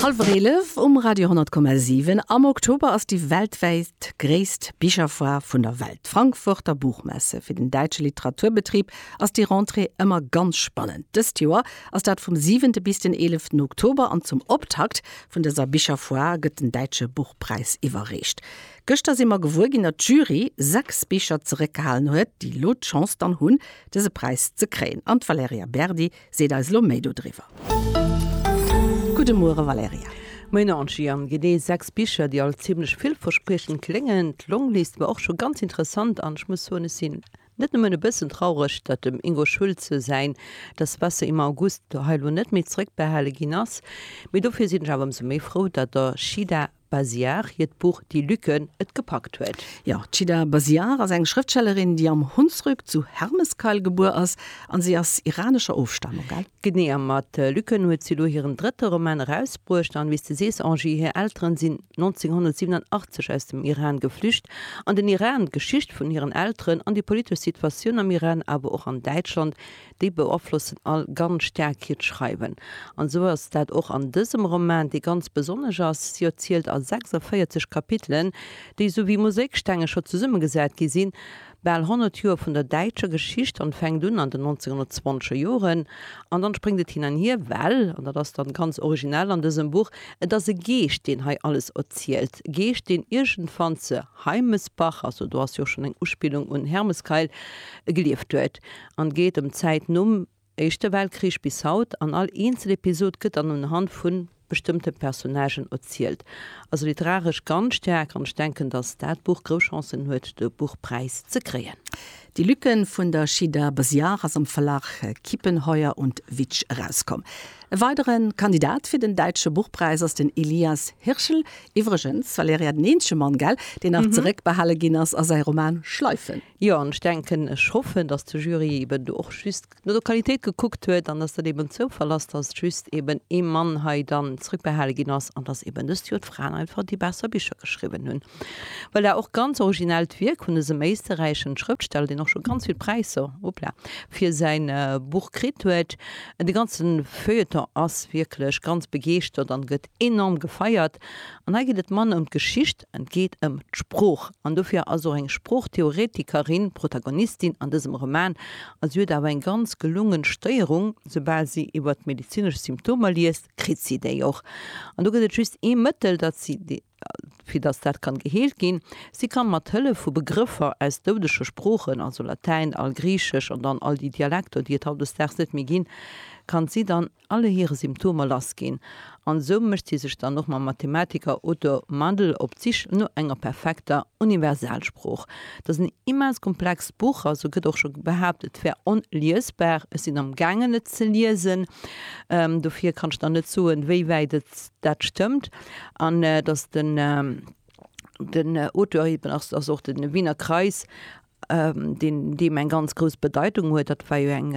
Halwer 11 um Radio 10,7. Am Oktober ass déi weltwäit gréisst Bicherfoire vun der Welt, d'Frankfurter Buchmesse. Fir den däitsche Literaturbetrib ass déi Rentrée ëmmer ganz spannend. Dëst Joer ass dat vum 7 bis den 11 Oktober an zum Optakt vun dëser Bicherfoire gëtt den Däitsche Buchpräis iwwerreecht. Gëschter si mer gewuer ginn, datt d'Jury 6 Bicher zeréckgehalen huet, déi elo d'Chance dann hunn, dëse Präis ze kréien. An d'Valerija Berdi Seet eis lo méi do driwwer. Gudde Muere Valerija. Moien Angie, an genee 6 Bicher déi all zimlech villverspriechend kléngen. D'Longlist war och scho ganz interessant an ech muss soen ech sinn net nëmmen e bëssen traureg datt dem Ingo Schulze säin Das Wasser im August hei lo net méi zrëckbehale ginn ass, mee dofir sinn ech awer ëmsou méi frou datt der Shida Basiar hiert Buch Die Lücken et gepackt huet. Jo, d'Chida Basiar ass eng Schrëftstellerin, déi am Hunsrück zu Hermeskeil gebuer ass an si ass iranescher Ofstamung, gell? Genee, a mat Lücken huet si elo hiren drëtte Roman erausbruecht. An wéi s de sees, Angie, hir Elteren sinn 1987 aus dem Iran geflücht. An den Iran, d'Geschicht vun hiren Elteren an déi politesch Situatioun am Iran, awer och an Däitschland. déi beaflossen all ganz staark hiert Schreiwen. An esou ass dat och an dësem Roman, dee ganz besonnesch ass. Si erzielt a 46 Kapitelen, déi, esou wéi Mosaikstenge scho zesummegesat gi sinn, bal 100 Joer vun der däitscher Geschicht an, fänkt un an den 1920er Joren an dann spréngt et hin an hier, well, an dat ass dann ganz originell an dësem Buch, et ass e Geescht, deen hei alles erzielt, e Geescht, deen iergendwann ze Heimesbach, also do ass jo och schonn eng Uspillung un Hermeskeil, gelieft huet. an geet ëm d'Zäit nom Éischte Weltkrich bis haut an all eenzel Episod gëtt dann unhand vu bestëmmte Personnagen erzielt. Also literaresch ganz staark an ech denken, dass dat Buch grouss Chancen huet de Buchpräis ze kréien. Die Lücken vun der Shida Besiar ass am Verlag Kiepenheuer und Witsch erauskomm. E weidere Kandidat fir den Däitsche Buchpräis ass den Elias Hirschl. Iwwregens, Valerija, den eenzege Mann, gell, deen nach zeréckbehale ginn ass a säi Roman Schleifen. Jo, an ech denken, ech hoffen, dass de Jury eben do och just no der Qualitéit gekuckt huet an dass dat eben en Zoufall ass, dass just eben ee Mann hei dann zrëckbehale ginn ass an dass eben dëst Joer d'Fraen einfach déi besser Bicher geschriwwen hunn. Voilà, och ganz originellt Wierk vun dësem éisterräischen Schrëftsteller, deen och scho ganz vill Präisser, hoppla, fir säin Buch kritt huet. De ganze Feuilleton ass wierklech ganz begeeschtert an gëtt enorm gefeiert. An hei geet et manner ëm d'Geschicht, Et geet ëm d'Sprooch an dofir ass och eng Sproochtheoretikerin d'Protagonistin an dësem Roman. A si huet awer eng ganz gelungen Stéierung, Soubal si iwwert medezinesch Symptomer liest, kritt si déi och. An do gëtt et just ee Mëttel, dat si, fir datt dat kann geheelt ginn, Si kann mat Hëllef vu Begrëffer aus doudege Sproochen, also Latäin, Algriichesch an dann all déi Dialekter, déi et hautdesdaags net méi ginn, kann si dann, alle hire Symptomer lass ginn, an esou mécht si sech dann och mam Mathematiker Otto Mandl op d'Sich no enger perfekter Universalsprooch. Datt en immens komplext Buch ass, sou gëtt och scho behaapt, et wär onliesbar. Ech sinn am gaangen et ze liesen, dofir kann ech der net soen, wéi wäit et dat stëmmt, an datt den den Auteur eben ass, ass och de Wiener Kreis deen deem eng ganz grouss Bedeitung huet, dat war jo eng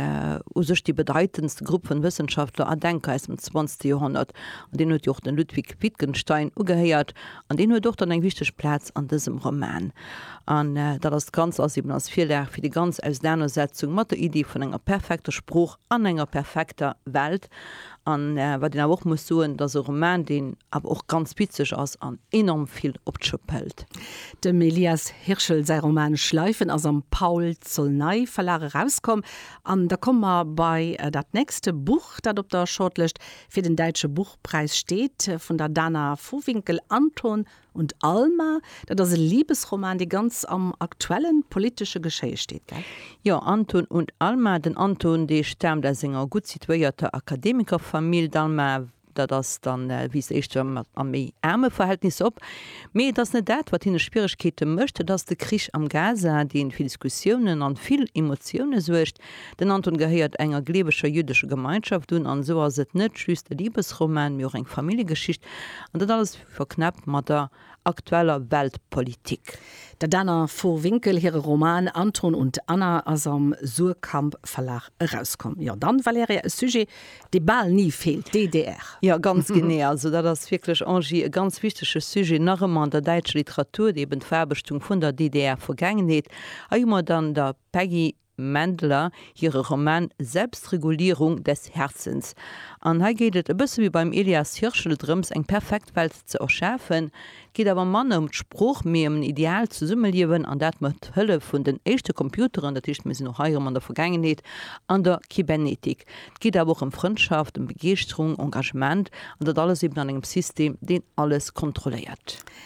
u sech déi bedeitendste Grupp vun Wëssenschaftler a Denker aus dem 20. Joerhonnert, an deen huet jo och den Ludwig Wittgenstein ugehéiert, an deen huet och dann eng wichteg Plaz an dësem Roman. An dat ass ganz ass eben als Virlag fir déi ganz Ausenanersetzung mat der Iddi vun enger perfekter Sprooch. an enger perfekter Welt an wat een awer och muss soen, et ass e Roman, deen awer och ganz witzeg ass an enorm vill op d'Schëpp hëlt. Dem Elias Hirschl säi Roman Schleifen ass am Paul Zolnay Verlag erauskomm an da komme mer bei dat nächste Buch, dat op der Shortlëscht fir den Däitsche Buchpräis steet, vun der Dana Vohwinkel, Anton Und Alma, dat ass e Libesroman, dee ganz am aktuelle politesche Geschéie steet, gell? Jo, Anton und Alma. Den Anton, dee staamt aus enger gutt situéierter Akademikerfamill. D'Alma, dat ass dann, wiisst éischter a méi aarme Verhältnisser op. Mee et ass net dat, wat hinne Schwieregkeete mécht, et ass de Krich am Gaza, dee fir Diskussiounen an vill Emotioune suergt. Den Anton gehéiert enger gleeweger jüddescher Gemeinschaft un. An esou ass et net just e Libesroman, mee och eng Familljegeschicht. An dat alles Verknäppt mat der aktueller Weltpolitik. Der Dana Vohwinkel hire Roman Anton und Anna ass am Suhrkamp Verlag erauskomm. Jo, dann, Valerija, e Sujet, dee bal ni feelt, d'DDR. Jo, ganz genee. Also, dat ass wierklech, Angie, e ganz wichtege Sujet nach ëmmer an der däitscher Literatur, eben d'Verarbechtung vun der DDR-Vergaangenheet. Hei hu mer dann der Peggy Mendler hire Roman Selbstregulierung des Herzens. An hei geet et, e bësse wéi beim Elias Hirschl, drëms, eng perfekt Welt ze erschafen. Et geet awer manner ëm d'Sprooch, mee ëm en ideaalt Zesummeliewen, an dat mat Hëllef vun den éischte Computeren, dat heescht, mir sinn och hei erëm an der Vergaangenheet, an der Kybernetik. Et geet awer och ëm Frëndschaft, ëm Begeeschterung, Engagement, an dat alles eben an engem System, deen alles kontrolléiert.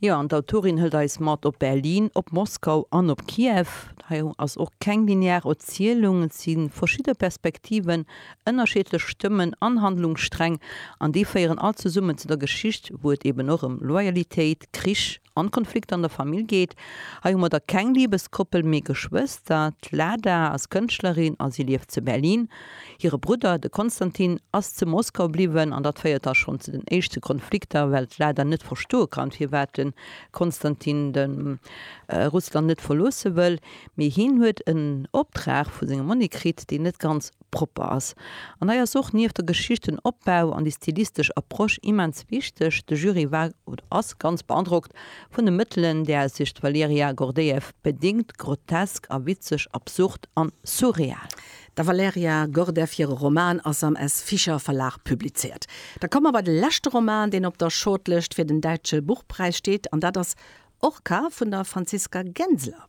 Jo, an d'Autorin hëlt eis mat op Berlin, op Moskau an op Kiew. Hei ass och keng linear Erzielung, et si verschidde Perspektiven, ënnerschiedlech Stëmmen an Handlungssträng, an déi féieren all zesummen zu der Geschicht, wou et eben och ëm Loyalitéit, Krich an Konflikter an der Famill geet. Hei hu mer da keng Libeskoppel, mee Geschwëster. D'Lada ass Kënschtlerin a si lieft zu Berlin. Hire Brudder, de Konstantin, ass zu Moskau bliwwen, an dat féiert da schonn zu den éischte Konflikter, well d'Lada net verstoe kann, firwat de Konstantin de Russland net verloosse wëll. Mee hien huet en Optrag vu sengem Monni kritt, deen net ganz propper ass. An hei ass och nieft der Geschicht den Opbau an déi stilistesch Approche immens wichteg. De Jury war oder ass ganz beandrockt vun de Mëttelen, där sech d'Valeriya Gordeev bedéngt, grotesk a witzeg, absurd an surreal. Der Valerija Gordev hire Roman ass am S. Fischer Verlag publizéiert. Da komme mer bei de leschte Roman, deen op der Shortlëscht fir den Däitsche Buchpräis steet, an dat ass Orca vun der Franziska Genseler.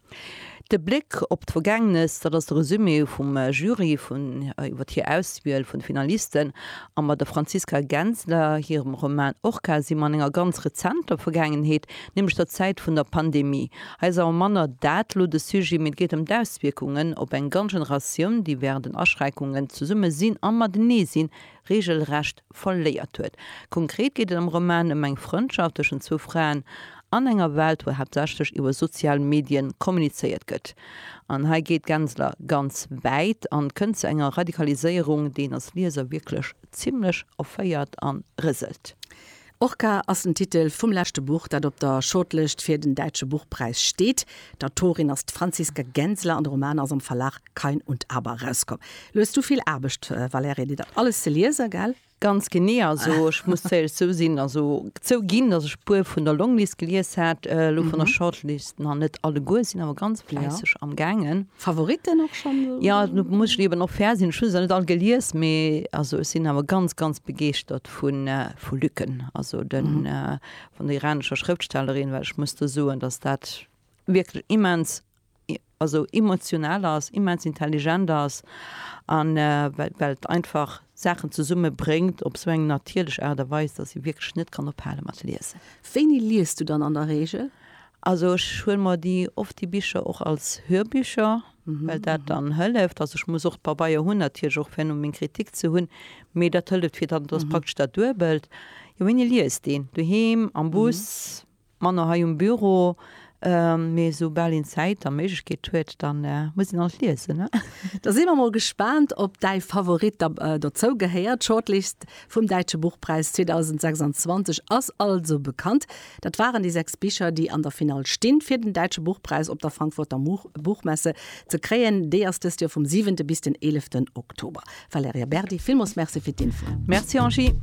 De Bléck op d'Vergaangenes, dat ass de Resumé vum Jury iwwer hir Auswiel vun de Finalisten. A mat der Franziska Genseler hirem Roman Orca si mer an enger ganz rezenter Vergaangenheet, nämlech der Zäit vun der Pandemie. Hei ass awer manner dat elo de Sujet, mee et geet ëm d'Auswierkungen op eng ganz Generatioun, déi wärend den Aschränkungen zesumme sinn a matenee sinn, reegelrecht verléiert huet. Konkret geet et am Roman ëm eng Frëndschaft tëschent zwou Fraen an enger Welt, wou haaptsächlech iwwer sozial Medien kommunizéiert gëtt. An hei geet d'Gensler ganz wäit an kënnt zu enger Radikaliséierung, déi een als Lieser wierklech zimlech erféiert a rëselt. Orca ass den Titel vum leschte Buch, dat op der Shortlëscht fir den Däitsche Buchpräis steet. D'Autorin ass d'Franziska Genseler an de Roman ass am Verlag Kain und Aber erauskomm. Lo hues du vill Aarbecht, Valerija, dir dat alles ze liesen, gell? Ganz genee. Also ech muss zouéierlech zousinn, also zouginn, dass ech e puer vun der Longlist gelies hat. Lo vun der Shortlist nach net alleguer, sinn awer ganz fläisseg amgaangen. Favoriten och schon? Ja nu muss ech liewen och fair sinn schüs net all gelies mee also ech sinn awer ganz ganz begeeschtert vun vu Lücken also den mm -hmm. vun der iranescher Schrëftstellerin well ech muss de soen dass dat wierklech immens also emotional ass immens intelligent ass an well well einfach Saachen zesumme bréngt op sou eng natierlech Aart a Weis dass ee wierklech net kann ophale mat liesen. Wéini liest du dann an der Regel? Also ech huele mer déi oft déi Bicher och als Hörbücher, well dat dann hëlleft. Also ech muss och d'Pabeier hunn natierlech och fir no meng Kritik ze hunn, mee dat hëlleft fir dann, dat ass praktesch dat Duebelt. Jo, wéini liest een? Doheem, am Bus, manner hei um Büro, mee esou bal een Zäit a Méiglechkeet huet, da muss een alt liesen. Da si mer mol gespaant, ob däi Favorit da dozou gehéiert. D'Shortlist vum Däitsche Buchpräis 2026 ass also bekannt. Dat waren déi 6 Bicher, déi an der Finall stinn, fir den Däitsche Buchpräis op der Frankfurter Buchmesse ze kréien. Déi ass dëst Joer vum 7 bis den 11 Oktober. Valerija Berdi, villmools Merci fir d'Infoen. Merci Angie.